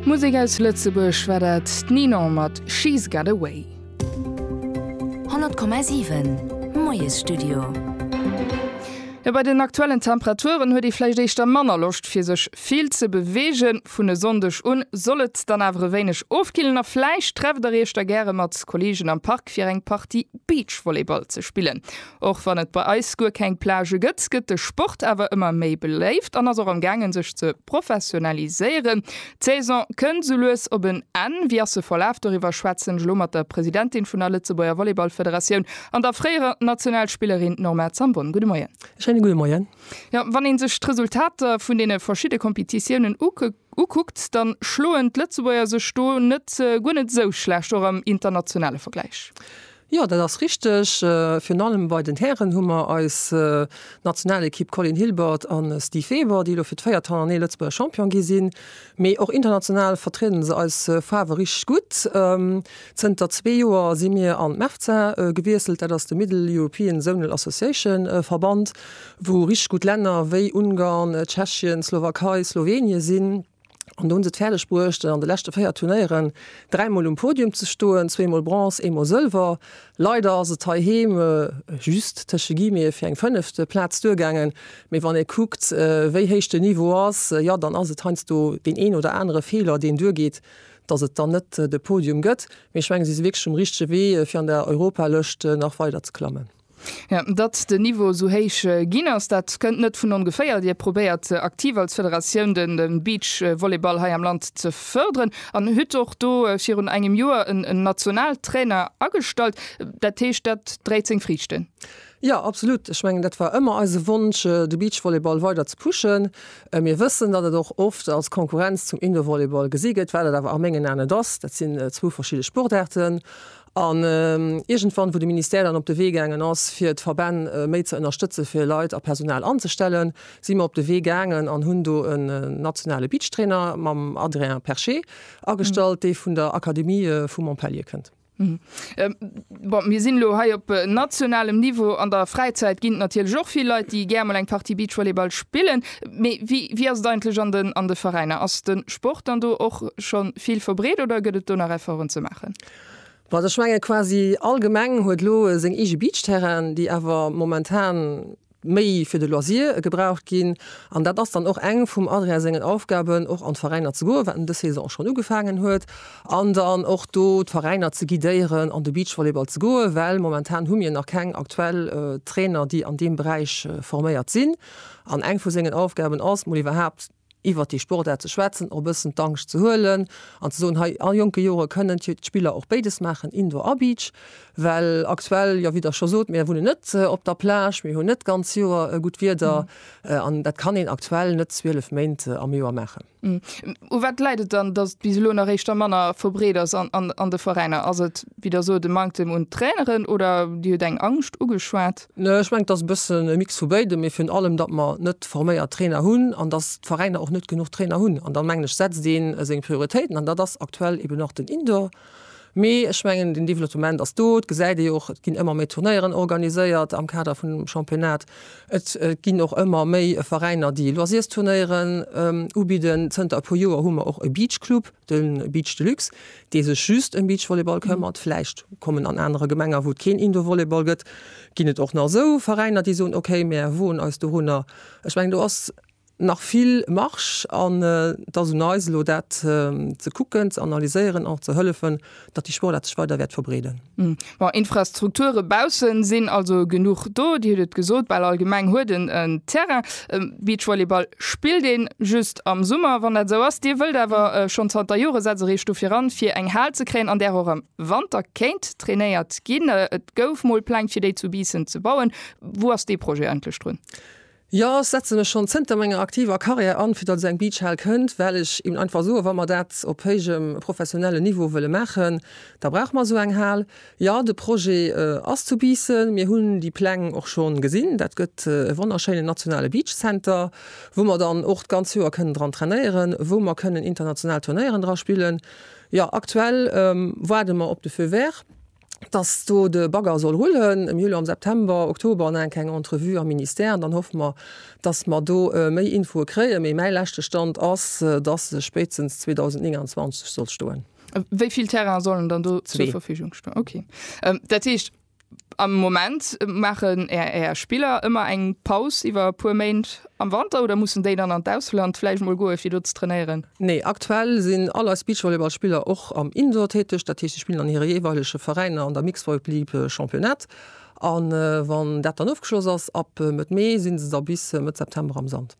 Musek aus Lëtzebuerg war dat, d'Ninon mat She's Got A Way. 100,7 Moiesstudio. Jo, bei den aktuellen Temperaturen huet ee vläicht éischter manner Loscht fir sech vill ze beweegen. Vun e Sonndeg un soll et dann awer e wéineg ofkillen a vläicht trefft der iech da gäre mat Kolleegen am Park fir eng Partie Beachvolleyball ze spillen. Och wann et bei eis guer keng Plagë gëtt, gëtt de Sport awer ëmmer méi beléift an ass och am gaangen sech ze professionaliséieren. D'Saison kënnt sou lues op en Enn. Wéi ass se verlaf? Doriwwer schwätzen ech elo mat der Presidentin vun der Lëtzebuerger Volleyballfederatioun an der fréierer Nationalspillerin Norma Zambon. Gudde Moien. E schéine gudde Moien. Jo, wann ee sech d'Resultater vun deene verschidde Kompetitiounen ukuckt, da schloen d'Lëtzebuerger sech do net guer net esou schlecht, och am internationale Vergläich. Jo, dat ass richteg. Virun allem bei den Hären hu mer eis Nationalekipp Colin Hilbert a Steve Weber, déi elo fir d'véiert Hannernee Lëtzebuerger Champion gi sinn. Mee och international vertrieden se eis Faarwe richteg gutt. Zënter zwee Joer si mir an d'MEFZA gewiesselt, dat ass de Middle European Zonal Association Verband, wou richteg gutt Länner wéi Ungarn, Tschechien, Slowakei, Slowenien sinn. An do hu se et fäerdeg bruecht, an de leschte véier Turnéieren dräi Mol um Podium ze stoen, zwee Mol Bronze, ee Mol Sëlwer. Leider ass et heiheem just, tësche Guillemete, fir eng fënneft Plaz duergaangen. Mee wann ee kuckt, wéi héich de Niveau ass, jo, dann ass et heiansdo deen een oder anere Feeler, deen duergeet, dass et dann net de Podium gëtt. Mee ech mengen, si si wierklech um richtege Wee, fir an der Europalëscht nach weiderzeklammen. Jo, datt den Niveau esou héich ginn ass, dat kënnt net vun ongeféier. Dir probéiert aktiv als Federatioun de Beachvolleyball hei am Land ze fërderen an hutt och do virun engem Joer en Nationaltrainer agestallt. Dat heescht, dat dréit seng Friichten? Jo, absolut. Ech mengen, dat war ëmmer eise Wonsch, de Beachvolleyball weider ze pushen. Mir wëssen, datt et och oft als Konkurrenz zum Indoorvolleyball gesi gëtt, wat et awer a mengen Aen net ass. Dat sinn zwou verschidde Sportaarten. An iergendwann, wou de Ministère dann op de Wee gaangen ass, fir d'Verbänn méi ze ënnerstëtze fir Leit a Personal anzestellen, si mer op de Wee gaangen an hunn do en nationale Beachtrainer mam Adrien Perché agestallt, dee vun der Akademie vu Montpellier kënnt. Bon, mir sinn elo hei op nationalem Niveau. An der Fräizäit ginn et natierlech och vill Leit, déi gär mol eng Partie Beachvolleyball spillen. Mee wéi ass et eigentlech an de Veräiner? Ass de Sport dann do och scho vill verbreet oder gëtt et do nach Efforten ze maachen? Well ech mengen, quasi all Gemeng huet elo seng eege Beachterrainen, déi awer momentan méi fir de Loisir gebraucht ginn. An dat ass dann och eng vum Adrien sengen Aufgaben, och an d'Veräiner ze goen, wat en dës Saison och schonn ugefaangen huet, an dann och do d'Veräiner ze guidéieren, an de Beachvolleyball ze goen, well momentan hu mir nach keng aktuell Trainer, déi an deem Beräich forméiert sinn. An eng vu sengen Aufgaben ass, mol iwwerhaapt, iwwert déi Sportaart ze schwätzen, och e bëssen d'Angscht ze huelen an ze soen, hei a jonke Jore kënnen d'Spiller och béides maachen, Indoor a Beach. Well aktuell, jo wéi Der scho sot, mir wunnen net op der Plage, mir hunn net d'ganz Joer gutt Wieder an dat kann een aktuell net 12 Méint am Joer maachen. U wat läit et dann, datt et bis elo nach éischter manner verbreet ass an de Veräiner? Ass et, wéi Der sot, e Manktem un Traineren oder Dir hutt eng Angscht ugeschwat? Ech mengen, et ass e bëssen e Mix vu béidem, mee virun allem, datt mer net forméiert Trainer hunn an datt d'Veräiner och net genuch Trainer hunn. An dann, mengen ech, setzt ee seng Prioritéiten an dat ass aktuell eben nach den Indoor. Mee ech mengen, den Develottement ass do, et gesäit ee jo och, et ginn ëmmer méi Turnéieren organiséiert am Kader vun dem Championnat. Et ginn och ëmmer méi Veräiner, déi Loisirsturnéieren ubidden. Zënter e puer Joer hu mer och e Beach Club, de Beach Deluxe, dee sech just ëm Beachvolleyball këmmert, vläicht kommen an anere Gemenger, wou et keen Indoorvolleyball gëtt, ginn et och nach esou Veräiner, déi soen, okay, mär woen eis dorunner. Ech mengen, do ass nach vill Marge an et ass un eis elo dat ze kucken, ze analyséieren an och ze hëllefen, datt déi Sportaart sech weider wäert verbreeden. Bon, Infrastrukture baussen sinn also genuch do. Dir hutt et gesot, bal all Gemeng huet en en Terrain. Beachvolleyball spillt een just am Summer, wann dat esou ass. Dir wëllt awer schonn zanter Jore setzt der iech dofir an, fir eng Hal ze kréien, an där och am Wanter kéint trainéiert ginn. Et gouf mol Pläng, fir déi zu Biissen ze bauen. Wou ass dee Projet endlech drun? Jo, ech setzen mech schonn zënter menger aktiver Karriär an, fir datt esou eng Beachhal kënnt, well ech eben einfach soen, wa mer dat op héijem professionellen Niveau wëlle maachen, da brauche mer esou eng Hal. Jo, de Projet ass zu Biissen. Mir hunn déi Pläng och schonn gesinn. Dat gëtt e wonnerschéinen nationale Beach Center, wou mer dann och d'ganz Joer kënnen dran trainéieren, wou mer kënnen international Turnéieren dra spillen. Jo, aktuell waarde mer op de Feu vert. dass do de Bagger soll rullen am Juli, am September, Oktober an enk eng Entrevue am Ministère an dann hoffe mer, dass mer do méi Infoe kréien. Mee mäi leschte Stand ass, dass se spéitstens 2029 soll stoen. Wéi vill Terrainen sollen dann do zur Verfügung stoen? Okay. Dat heescht, am Moment maachen Är Spiller ëmmer eng Paus iwwer e puer Méint Am Wanter oder mussen déi dann an d'Ausland vläicht mol goe fir do ze trainéieren? Nee, aktuell sinn all eis Beachvolleyballspiller och am Indoor täteg, dat heescht si spillen an hire jeeweilege Veräiner an der Mixed-Voiplyp Championnat a wann dat dann ofgeschloss ass ab Mëtt Mee si se da bis Mëtt September am Sand.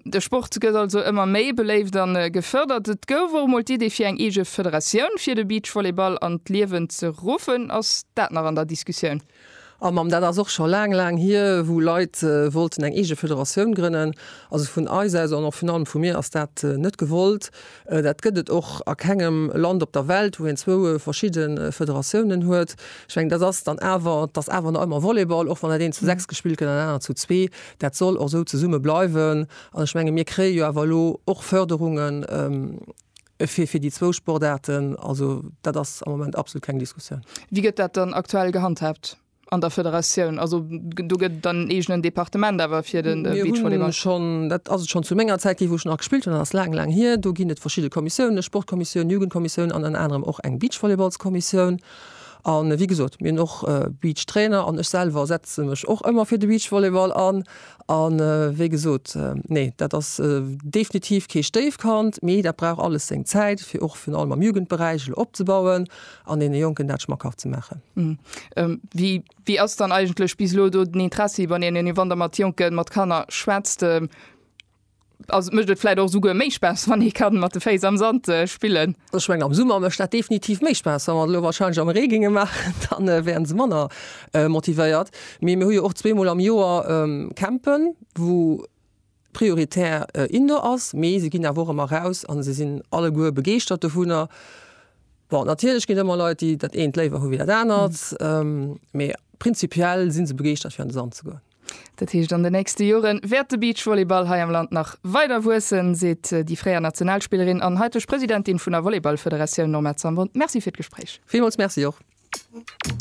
De Sport gëtt also ëmmer méi beléift a gefërdert. Et gouf och mol d'Idee fir eng eege Federatioun fir de Beachvolleyball an d'Liewen ze ruffen. Ass dat nach an der Diskussioun? A Mamm, dat ass och scho laang, laang hier, wou Leit wollten eng eege Federatioun grënnen. Also vun eis aus an och virun allem vu mir ass dat net gewollt. Dat gëtt et och a kengem Land op der Welt, wou een zwou verschidde Federatiounen huet. Ech mengen, dat ass dann awer, et ass awer nach ëmmer Volleyball, och wann dat eent zu sechs gespillt gëtt an dat anert zu zwee. Dat soll och esou zesumme bleiwen. An ech menge mir kréie jo awer elo och Förderungen. Fir fir déi zwou Sportaarten, also dat ass am Moment absolut keng Diskussioun. Wéi gëtt dat dann aktuell gehandhaabt an der Federatioun? Also do gëtt et dann en eegenen Departement awer fir de Beachvolleyball? Schonn, dat ass et schonn zu menger Zäit ginn, wou ech nach gespillt hunn, dat ass laang, laang hier. Do ginn et verschidde Kommissiounen, eng Sportkommissioun, eng Jugendkommissioun an ënner anerem och eng Beachvolleyballskommissioun. A wéi gesot, mir hunn och Beachtrainer an ech selwer setze mech och ëmmer fir de Beachvolleyball an. A wéi gesot, nee, dat ass definitiv kee Stéifkand, mee dat brauch alles seng Zäit, fir och virun allem am Jugendberäich elo opzebauen an deene Jonken dat schmackhaft ze maachen. Wéi ass dann eigentlech bis elo do den Interessi bei deenen, wann Der mat Jonken, mat Kanner schwätzt? Also et mécht et vläit och souguer méi Spaass, wann ee ka mat de Féiss am Sand spillen. Ech mengen, am Summer mécht dat definitiv méi Spaass. Wa mer et elo warscheinlech am Ree géinge maachen, da wäre se manner motivéiert. Mee mir hu jo och zweemol am Joer Campen, wou prioritär Indoor ass, mee se ginn awer och ëmmer eraus a se sinn alleguer begeeschtert dovunner. Bon, natierlech ginn et ëmmer Leit, déi dat eent léiwer hu wéi dat anert, mee prinzipiell si se begeeschtert, fir an de Sand ze goen. Dat heescht an de nächste Jore wäert de Beachvolleyball hei am Land nach weider wuessen, seet déi fréier Nationalspillerin an haiteg Presidentin vun der Volleyballfederatioun Norma Zambon. Merci fir d'Gespréich. Villmools Merci och.